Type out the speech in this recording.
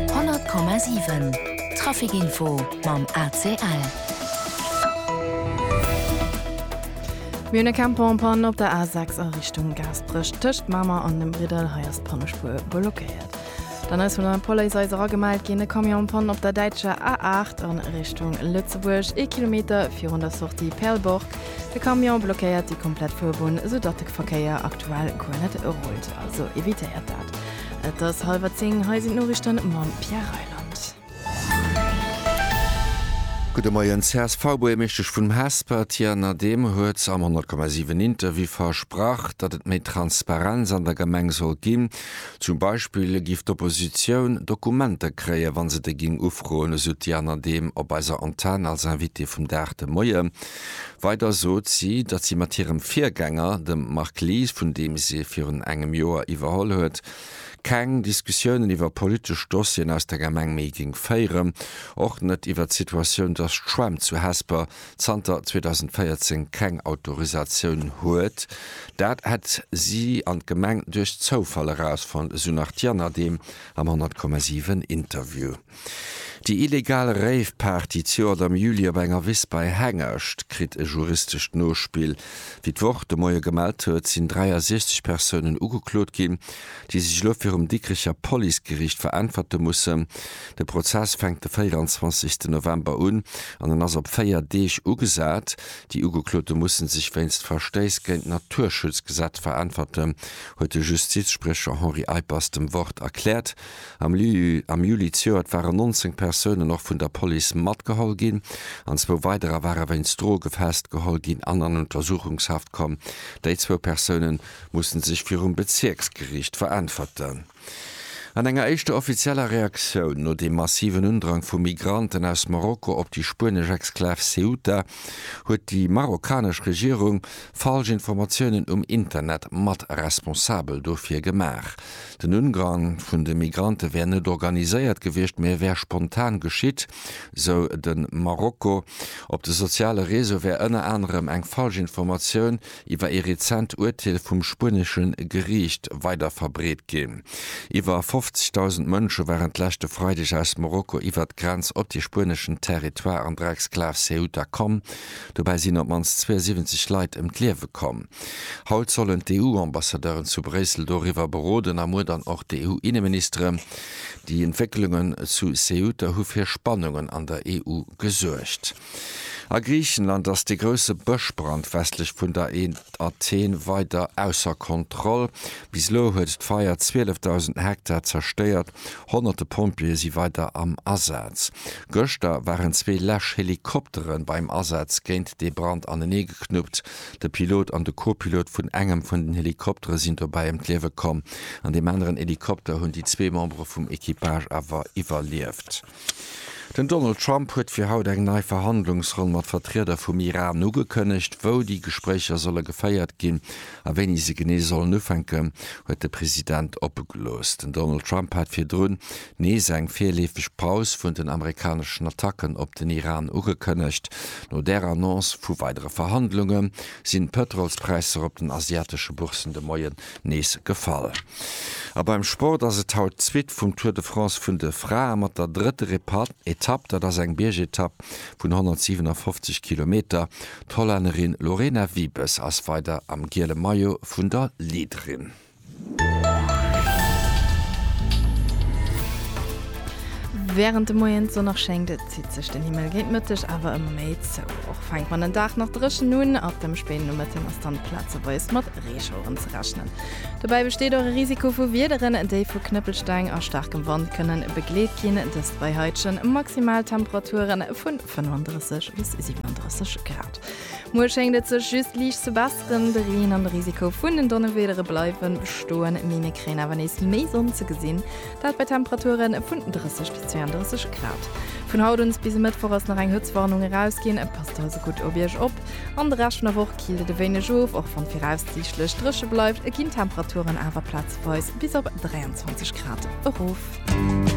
100,7 Trafic Info mam ACL. Mir hunn e Camper en panne op der A6 a Richtung Gaasperech. Tëscht Mamer an dem Briddel, hei ass d'Pannespuer blockéiert. Dann ass vun der Police eis eragemellt ginn, e Camion en panne op der däitscher A8 an Richtung Lëtzebuerg, ee Kilometer virun der Sortie Perlborg. De Camion blockéiert déi komplett Fuerbunn, esoudatt de Verkéier aktuell guer net rullt, also evitéiert dat. Et ass hallwer zéng, hei sinn d'Noriichten mam Pierre Reyland. Gudde Moien, d'CSV-Buergermeeschtesch vun Hesper, d'Diana Dehm, huet am 100,7 Interview versprach, datt et méi Transparenz an der Gemeng soll ginn. Zum Beispill géif d'Oppositioun Dokumenter kréien, wa se déi géing ufroen, esou d'Diana Dehm op eiser Antenn als Invitée vum Dag de Moie. Weider sot si, datt si mat hirem Virgänger, dem Marc Lies, vun deem si virun engem Joer iwwerholl huet, keng Diskussiounen iwwer politesch Dossieren aus der Gemeng méi géing féieren, och net iwwer d'Situatioun, datt d'Schwämm zu Hesper zanter 2014 keng Autorisatioun huet. Dat hätt si an d'Gemeng duerch Zoufall erausfonnt, esou nach d'Jana Dehm am 100,7 Interview. Déi illegal Rave-Party d'Joert am Juli op enger Wiss bei Hengescht kritt e juristescht Nospill. Wéi d'Wort de Moie gemellt huet, sinn 63 Persounen ugeklot ginn, déi sech elo virum Dikricher Policegeriicht veräntwerte mussen. De Prozess fänkt de 24 November un an en ass op véier Deeg ugesat. Déi Ugeklote musse sech wéinst Verstéiss géint d'Naturschutzgesetz veräntwerten, huet de Justizspriecher Henri Eippers dem Wort erkläert. Am Lyu am Juli zejoert waren 19 Persounen och vun der Police matgeholl ginn an zwou weiderer ware wéinst Droge festgeholl ginn an an Untersuchungshaft komm. Déi zwou Persoune musse sech virum Bezierksgeriicht veräntwerten. An enger éischter offizieller Reaktioun no deem massiven Undrang vu Migranten aus Marokko op déi spuenesch Exklav Ceuta huet déi marokkanesch Regierung falsch Informatiounen um Internet mat responsabel dofir gemaach. Den Ungang vun de Migrante wär net organiséiert gewiescht, mee wär spontan geschitt, sou de Marokko. Op de soziale Reseaue wär ënner anerem eng falsch Informatioun iwwer ee rezent Urteel vum spuenesche Geriicht weiderverbreet ginn. Iwwer 50.000 Mënsche waren d'lescht e Freideg aus Marokko iwwert d'Grenz op de spueneschen Territoire an der Exklav Ceuta komm. Dobäi sinn op d'mannst 72 Leit ëm d'Liewe komm. Haut sollen d'EU-Ambassadeuren zu Bréissel doriwwer beroden a muer dann och d'EU-Inneministeren. Déi Entwécklungen zu Ceuta hu fir Spannungen an der EU gesuergt. A Griichenland ass de grousse Bëschbrand westlech vun der Athen weider ausser Kontroll. Bis elo huet d'Feier 12.000 Hektar zerstéiert, honnerte Pompjeeë si weider am Asaz. Gëschter waren zwee Läsch-Helikoptere beim Asaz géint dee Brand aneneegeknuppt. De Pilot an de Co-Pilot vun engem vun den Helikoptere sinn dobäi ëm d'Liewe komm. An deem aneren Helikopter hunn déi zwee Membere vum Equipage awer iwwerlieft. Den Donald Trump huet fir haut eng nei Verhandlungsronn mat Vertrieder vum Iran ugekënnegt. Wou déi Gespréicher solle geféiert ginn a wéini se genee sollen ufänken, huet de President oppe gelooss. Den Donald Trump hat virdrun nees eng virleefeg Paus vun den amerikaneschen Attacken op den Iran ugekënnegt. No där Annonce vu weidere Verhandlunge sinn d'Pëtrolspräisser op den asiatesche Bourssen de Moien nees gefall. A beim Sport ass et haut d'Suite vum Tour de France vun de Frae mat der drëtter Etapp. Dat ass eng Biergetapp vun 157 Kilometer. D'Hollännerin Lorena Wiebes ass weider am giele Maillot vun der Leaderin. Wärend de Moien d'Sonn nach schéngt, zitt sech den Himmel géint Mëtteg awer ëmmer méi zou. Och fänkt man den Dag nach dréchen un, ab dem spéiden Nomëtten ass dann plazeweis mat Reeschaueren ze rechnen. Dobäi besteet och e Risiko vu Wiederen, déi vu Knëppelsteng a staarkem Wand kënnen begleet ginn, dëst bei heitege Maximaltemperature vu 35 bis 37 Grad. Muer schéngt et sech just liicht ze besseren, de Reen an de Risiko vun den Donnewiedere bleiwe bestoen, mee mir kréien awer nees méi Sonn ze gesinn, dat bei Temperature vun 30 bis 32 Grad. Vun haut un bis e Mëttwoch ass nach eng Hëtztwarnung erausginn, passt also gutt op Iech op. An de Rescht vun der Woch killt et e wéineg of, och wann viraussiichtlech dréche bleift, ginn d'Temperaturen awer plazeweis bis op 23 Grad erof.